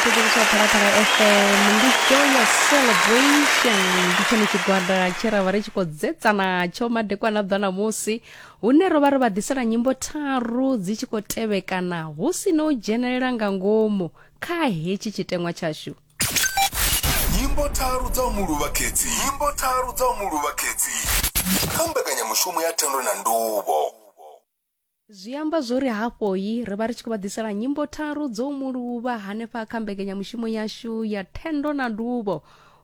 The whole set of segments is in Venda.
mphikiriso phalaphala fm ndi joyous celebration ndi tshone tshigwada tshe ra vha ri tshi khou dzetsa natsho madekwana bva ṋamusi hune ro vha ro vha ḓisela nyimbo tharu dzi tshi khou tevhekana hu si no u dzhenelela nga ngomu kha hetshi tshiteṅwa tshashu nyimbo tharu dza u mu luvha khedzi nyimbo tharu dza u mu luvha khedzi kha mbekanyamushumo ya thendo na nduvho zwi amba zwo ri hafhoi ri vha ri tshi khou vha ḓisela nyimbo tharu dzo muluvha hanefha kha mbekanyamushumo yashu ya thendo na nduvho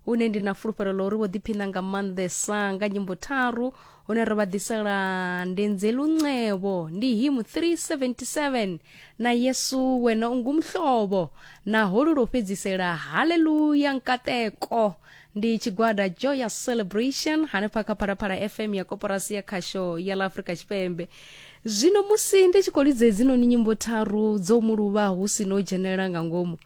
hune ndi na fulufhelo ḽa uri vho ḓiphina nga maanḓesa nga nyimbo tharu hune ri vha ḓisela ndenze lunxevo ndi him 377 na yesu wena ungumhlobo na holu lwo fhedzisela haleluya nkateko ndi tshigwada joyous celebration hanefha kha phalaphala fm ya koporasi ya khasho ya la afrika tshipembe zwino musi ndi tshi khou lidza hedzinoni nyimbo tharu dzo mu luvha hu si no dzhenelela nga ngomu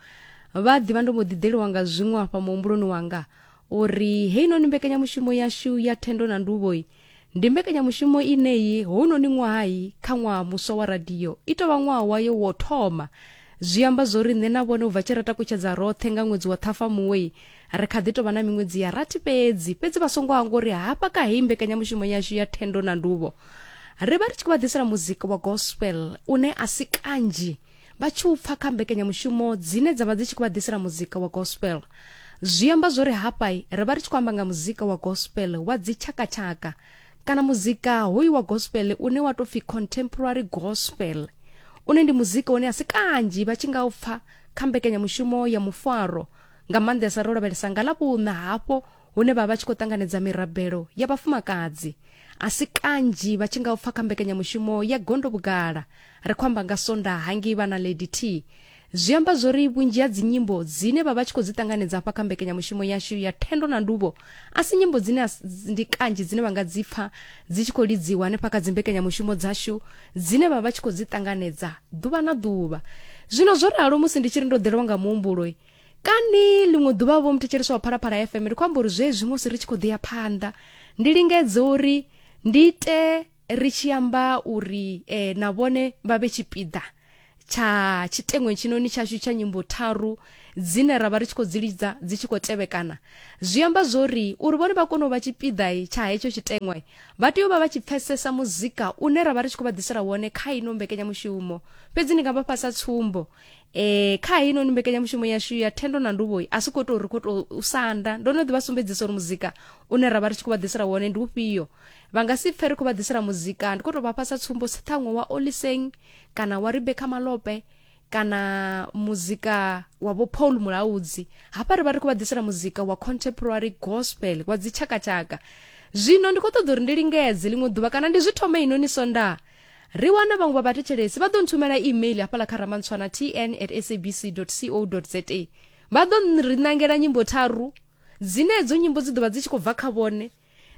vha ḓivha ndo mbo ḓiḓeliwa nga zwiṅwe afha muhumbuloni wanga uri heinoni mbekanyamushumo yashu ya thendo na nduvhoi ndi mbekanyamushumo ineyi hounoni ṅwahayi kha ṅwaha muswa wa radio i tovha ṅwaha wayo wo thoma zwi amba zwo ri nṋe na vhone u bva tshi ra takutshedza roṱhe nga ṅwedzi wa ṱhafamuwe ri kha ḓi tovha na miṅwedzi ya rathi fhedzi fhedzi vha songo hangwa uri hafha ka heyi mbekanyamushumo yashu ya thendo na nduvho ri vha ri tshi khou vha ḓisela muzika wa gospel une a si kanzhi vha tshi u pfa kha mbekanyamushumo dzine dza vha dzi tshi khou vha ḓisela muzika wa gospel zwi amba zwo ri hafha ri vha ri tshi khou amba nga muzika wa gospel wa dzitshakatshaka kana muzika hoyu wa gospel une wa tou pfi contemporary gospel une ndi muzika une a si kanzhi vha tshi nga u pfa kha mbekanyamushumo ya mufaro nga maanḓesa ro lavhelesa nga ḽa vhuṋa hafho hune vha vha tshi khou ṱanganedza mirabelo ya vhafumakadzi a si kanzhi vha tshi nga u pfa kha mbekanyamushumo ya gondo vhugala ri khou amba nga sonda hangei vha na lady t zwi amba zwori vhunzhi ha dzinyimbo dzine vha vha tshi khou dzi ṱanganedza hafha kha mbekanyamushumo yashu ya thendo na nduvho a si nyimbo dzine ndi kanzhi dzine vha nga dzi pfa dzi tshi khou lidziwa hanefha kha dzimbekanyamushumo dzashu dzine vha vha tshi khou dzi ṱanganedza ḓuvha na ḓuvha zwino zwo ralo musi ndi tshi ri ndo ḓelwa nga muhumbulo kani ḽiṅwe ḓuvha vho muthetsheleswa wa phalaphala fm ndi khou amba uri zwezwi musi ri tshi khou ḓi ya phanḓa ndi lingedze uri ndi ite ri tshi amba uri eh, na vhone vha vhe tshipiḓa tsha tshiteṅweni tshinoni tshashu tsha nyimbo tharu dzine ra vha ri tshi khou dzi lidza dzi tshi khou tevhekana zwi amba zwori uri vhone vha kone u vha tshipiḓa tsha hetsho tshiteṅwe vha tea u vha vha tshi pfesesa muzika une ra vha ri tshi khou vha ḓisela wone kha ino mbekenyamushumo fhedzi ndi nga vha fhasa tsumbo e, kha heinoni mbekanyamushumo yashu ya thendo na nduvhoi a si khou tou ri khou tou u sanda ndo no ḓi vha sumbedzisa uri muzika une ra vha ri tshi khou vha ḓisela wone ndi ufhio vha nga si pfe ri khou vha ḓisela muzika ndi khou tou vha fhasa tsumbo si ṱhaṅwe wa oliseng kana wa rebeka malope kana muzika wa vho paul mulaudzi hafha ri vha ri khou vha ḓisela muzika wa contemporary gospel wa dzitshakatshaka zwino ndi khou ṱoḓa uri ndi lingedze ḽiṅwe ḓuvha kana ndi zwi thome inoni sonda ri wana vhaṅwe vha vhathetshelesi vha ḓo nthumela email hafhala kha ramantswana tn at sabc co za vha ḓo ri ṋangela nyimbo tharu dzine edzo nyimbo dzi ḓo vha dzi tshi khou bva kha vhone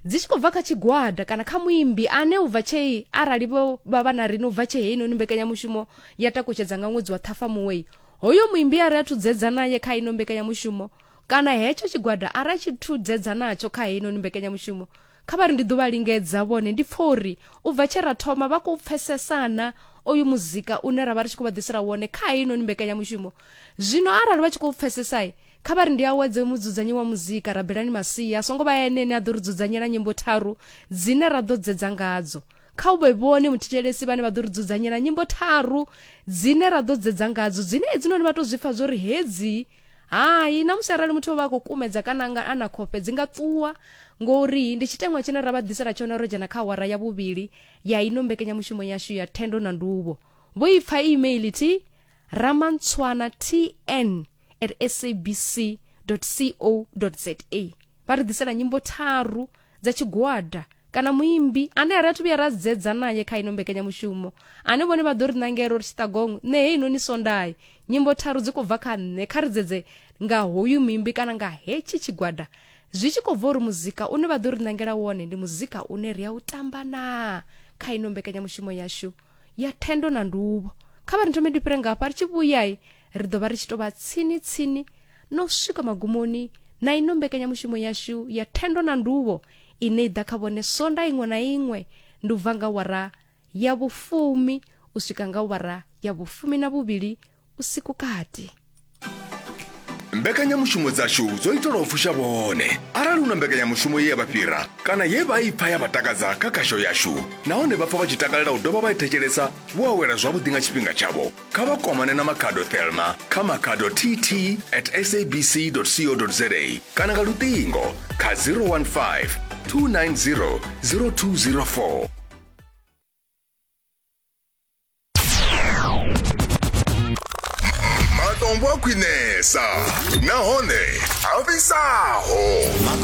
dzi tshi khou bva kha tshigwada kana kha muimbi ane u bva tshei arali vho vha vha na rine u bva tshei heinoni mbekanyamushumo ya takutshedza nga ṅwedzi wa ṱhafamuwei hoyo muimbi a ri a thudzedza naye kha ino mbekanyamushumo kana hetsho tshigwada a ra tshi thudzedza natsho kha heinoni mbekanyamushumo Kha vha ri ndi ḓo vha lingedza vhone. Ndi pfa uri u bva tshe ra thoma vha khou pfesesana oyu muzika une ra vha ri tshi khou vha ḓisela wone kha heinoni mbekanyamushumo. Zwino arali vha tshi khou pfesesa, kha vha ri ndi awedze mudzudzanyi wa muzika, Rabelani Masia, a songo vha ene ane a ḓo ri dzudzanyela nyimbo tharu dzine ra ḓo dzedza ngadzo. Kha hu vhe vhone muthetshelesi vhane vha ḓo ri dzudzanyela nyimbo tharu dzine ra ḓo dzedza ngadzo, dzine hedzinoni vha tou zwi pfa zwo ri hedzi hai na musi arali muthu o vha a khou kumedza kana anga a na khofhe dzi nga ṱuwa ngori ndi tshiteṅwa tshine ra vha ḓisela tshone ro dzhena kha awara ya vhuvhili ya ino mbekanyamushumo yashu ya thendo na nduvho vho i pfa email thi ramantswana tn at sabc co za vha ri ḓisela nyimbo tharu dza tshigwada kana muimbi ane a ri athu vhuya ra dzedza naye kha ino mbekanyamushumo ane vhone vha ḓo ri nangela uri tshiṱagong nṋe hei noni swondayi nyimbo tharu dzi khou bva kha nṋe kha ri dzedze nga hoyu muimbi kana nga hetshi tshigwada zwi tshi khou bva uri muzika une vha ḓo ri nangela wone ndi muzika une ri a u tamba naa kha ino mbekanyamushumo yashu ya thendo na nduvho kha vha ri nthome ndi fhire ngafha ri tshi vhuyai ri ḓo vha ri tshi tou vha tsini-tsini na u swika magumoni na ino mbekanyamushumo yashu ya thendo na nduvho ine i ḓa kha vhone sonda iṅwe na iṅwe ndi u bva nga wara ya vhufumi u swika nga wara ya vhufumi na vhuvhili usiku kati mbekanyamushumo dzashu dzo itelwa u fusha vhone arali hu na mbekanyamushumo ye ya vha fhira kana ye vha i pfa ya vha takadza kha khasho yashu nahone vha pfa vha tshi takalela u dovha vha i thetshelesa vho awela zwavhuḓi nga tshifhinga tshavho kha vha kwamane na makhado thelma kha makhado tt at sabc co za kana nga luṱingo kha 015 290 0204 matombo a khwinesa nahone a fhisaho